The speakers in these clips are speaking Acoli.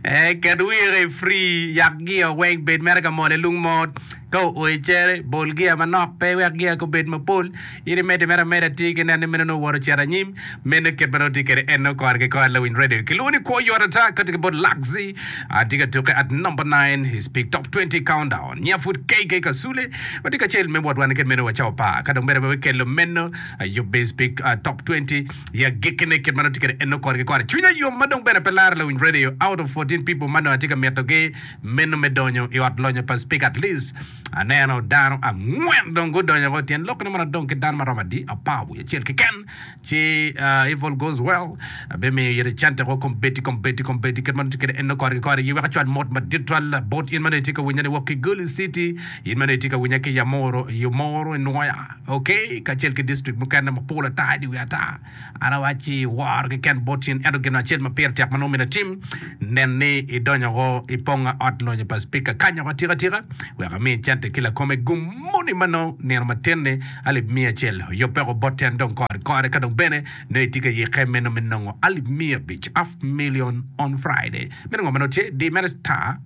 Ee, ket wire i fri, yak gia weng bed mere ka mol i lung mot. Ka oo i cere, bol gia manok pe wek gia ka obed mapol. In imedde mere ameda, ti ki neno ni meno nongo owoto ocito anyim. Meno kit ma nongo itye kwede enno kore ki kore. Lawiny Radio kilwongo ni Kwo Yot Ata, kati ki bot Luxy. Atye ka tukke at number nine i Speak Top 20 Countdown. Nya pud KK Kasule watye kacel me wot wan kit meno wa cawa par. Ka dong bene pe wakello meno, ayubbe i Speak ah, Top 20. I agikkine, kit ma nongo atye kwede en nongo kore ki kore. Cwinya yom ma dong bene pe laro lawiny radio out of fourteen people ma nongo atye ka mitogi meno me donyo i ot lonyo pa Speaker. At least aneno dano angwen dong gudonyo woko. Tyen lokkine mono adong ki dano ma romo adi? Apar wiye acel keken. Ci if all goes well, abimiyo ite cente woko kombeddi kombeddi kombeddi. Kit ma nongo atye kwede en nongo kore ki kore. Aye wek acwal mot madit twal bot in ma nongo itye ka winyani woko ki Gulu City, in ma nongo itye ka winya ki Yamuru, Yumuru, Nwoya. OK, kacel ki distrikt mukene mapol ata i dye wiye ata, an awacci wor keken bot in, ento gin acel ma pire tek ma nongo myero atim, nen ni idonyo woko i ponga ot lonyo pa Spika kany woko atika tika wek ami cente ki lakome gum moni ma nongo nino matin-ni alip miya acel oyubbe woko botta en dong kore kore ka dong bene nongo itye ka yikke meno me nongo alip miya abic, half million, on Friday. Meno ngo ma nongo tye? Di mere star.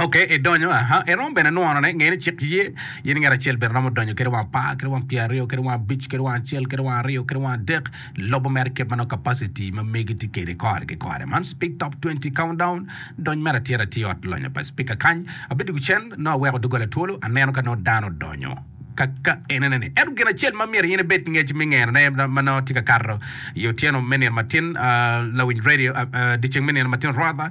Ok, edonyo, aha, eromo bene nwono ne, ngeni cik ye, in ngat acel bene romo donyo kede wang apar, kede wang pyer aryo, kede wang abic, kede wang acel, kede wang aryo, kede wang adek, lobo mere kit manok capacity ma megi tye kede kore ki kore. Man speak top twenty countdown, dony mere atir atir ot lonyo pa speaker kany, abedo ki cen, nongo aweko dogola twolo, aneno ka nongo dano odonyo, ka, ka enene ni, ento gin acel ma myero in ibed ki ngec me ngeno ne ma nongo tye ka kato i otyeno me nino matin, ah, lawiny radio, ah, ah, dyeceng me nino matin rwatha,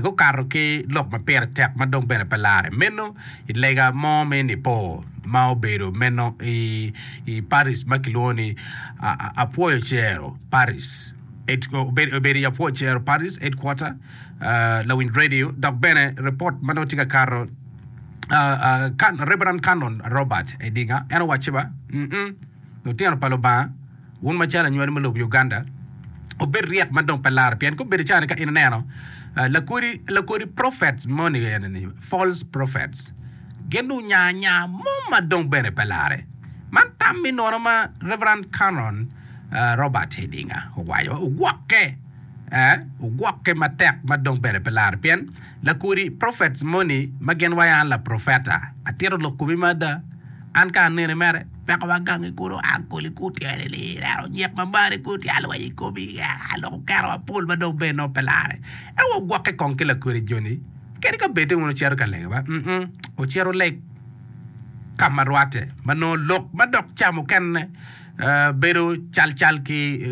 gukato ki lok ma pire tek ma dong bene pe larre meno i lega mo me Nipo ma obedo meno i parish ma kilwongo ni Apwoyo Cero Parish, obedo i Apwoyo Cero Parish Headquarter lawiny redio dok bene ripot ma dong tye ka kato Rev. Canon Robert Edinger en owaco ba, Lutino pa Lubanga. Wun macalo anywali ma lobo Uganda obed ryek ma dong pe laro pien ka obedo cani ka in ineno lakodi lakodi prophets moni eni ni false prophets gin dong onya anya mom ma dong bene pe lare man tam mi nono ma Reverend Canon Robert Hidinga owaco ogwokke eh ogwokke matek ma dong bene pe lare pien Lakudi, Prophets moni ma gin wa an laprofeta, atito lok komi me ada. An ka aneni mere, weko wa gangi kulu a koli ku tyene ni neno nyek ma mari ku tye alweny i komi, aa lok okero wa pol ma dong bene nongo pe lare. Ento wa ogwokke kong ki lakudi joni, kadi ka bed ni wun wucito ka lege wa, mm, wucit wuleg ka ma rwatte, ma nongo lok ma dok ca mukene. bedo calcal ki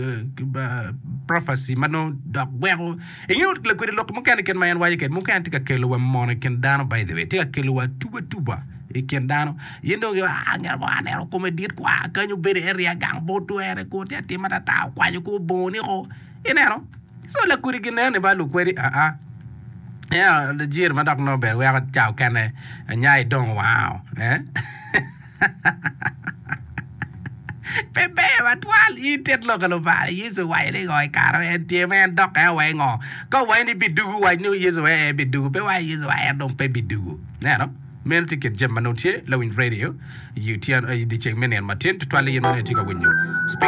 prophecy ma nongo dok gweko. Ingeyo lakwede lok mukene kit ma en waco kede mukene tye ka kelo wa mono i kin dano by the way. Tye ka kelo wa tuba tuba i kin dano. Yen dong giwa ah ngat mo aneno kome dit kwa kany obedo area gang pe otwere ko tye atim atata okwanyo ko bongone ko. Ineno? So lakwede ginen ni ba lukwede a a. Ea, Lajir ma dok nongo ber weko cawa kene nya idong wow. Eh? Pe ber wa twal in tit lok alubo apar? Yecu owaco ni ngo i kare ma en tye ma en dokke wa i ngo? Ka owaco ni bidugu wac ni Yecu aye en bidugu, pe waco Yecu wa en dong pe bidugu. Ineno? Meno tye kit jami ma nongo tye. Lawiny radio i dyeceng me nino matin, tutwal ni in ma nongo itye ka winyo.